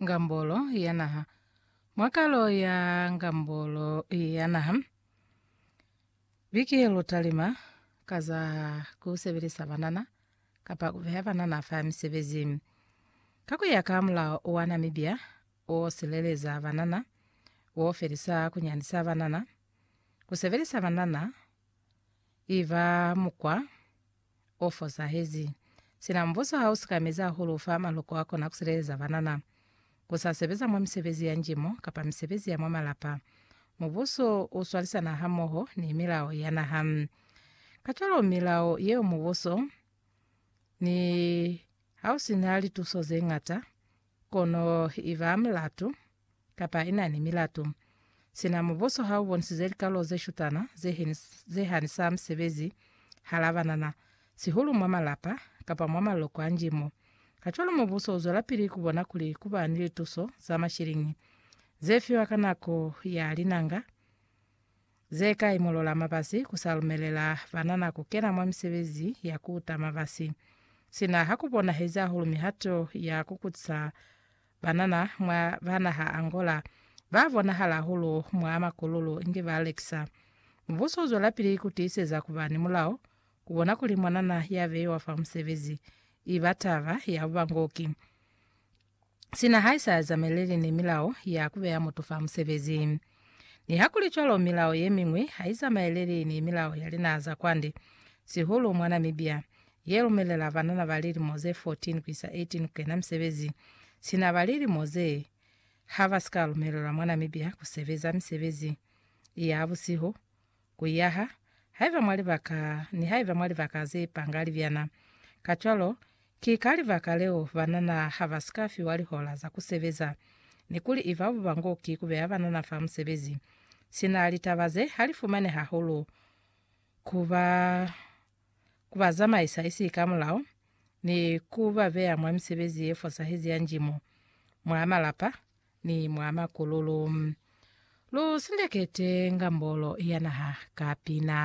Ngambolo ya Naha. Mwa kalo ya Ngambolo ya Naha, biki ye lu talima ka za ku sebelisa banana kapa ku beha banana fa misebezi. Ka ku ya ka mulao wa Namibia o sileleza banana, wo felisa ku nyanisa banana, ku sebelisa banana i ba mukwa o fosahezi. Sina mbuso ha u sikamezi hahulu fa maloko a kona ku sileleza banana. Ku sa sebeza mwa misebezi ya njimo kapa misebezi ya mwa malapa, mubuso u swalisana hamoho ni milao ya naha. Kacwalo milao yeo mubuso, ni ha u si na lituso ze ñata, Kono i ba mulatu, kapa i na ni milatu. Sina mubuso ha u bonisize likalo ze shutana, ze, ze hanisa musebezi hala banana, sihulu mwa malapa, kapa mwa maloko a njimo. Kacwalo mubuso u zwelapili ku bona kuli ku ba ni lituso za mashiliñi, ze fiwa ka nako ya linanga, Ze kai mulola mabasi ku sa lumelela banana ku kena mwa misebezi ya ku ta mabasi? Sina ha ku bonahezi hahulu mihato ya ku kutisa banana mwa ba naha Angola, ba bonahala hahulu mwa makululu inge ba lekisa. Mubuso u zwelapili ku tiiseza ku ba ni mulao, ku bona kuli mwanana ya beiwa fa musebezi i ba taba ya bubangoki. sina haisa zameleli ni milao ya kubeya mutu fa musebezi. Nihakulicwalo, milao yemiñwi haizamaeleli ni milao ya linaha za kwande, sihulu mwa Namibia, yelumelela banana ba lilimo ze 14 kuisa 18 kukena misebezi sina ba lilimo ze habasika lumelelwa mwa Namibia kusebeza misebezi ya busihu, Kuyaha, haiba mwa libaka, nihaiba mwa libaka ze pangali byana. Kacwalo, ki ka libaka leo banana ha ba si ka fiwa lihola za ku sebeza, ni kuli i babo ba ngo ki ku beya banana fa musebezi. Sina litaba ze, ha li fumani hahulu ku ba, ku ba zamaisa isi ka mulao, ni ku ba beya mwa misebezi ye fosahezi ya njimo, mwa malapa, ni mwa makululu. Lu sindekete ngambolo ya naha ka pina.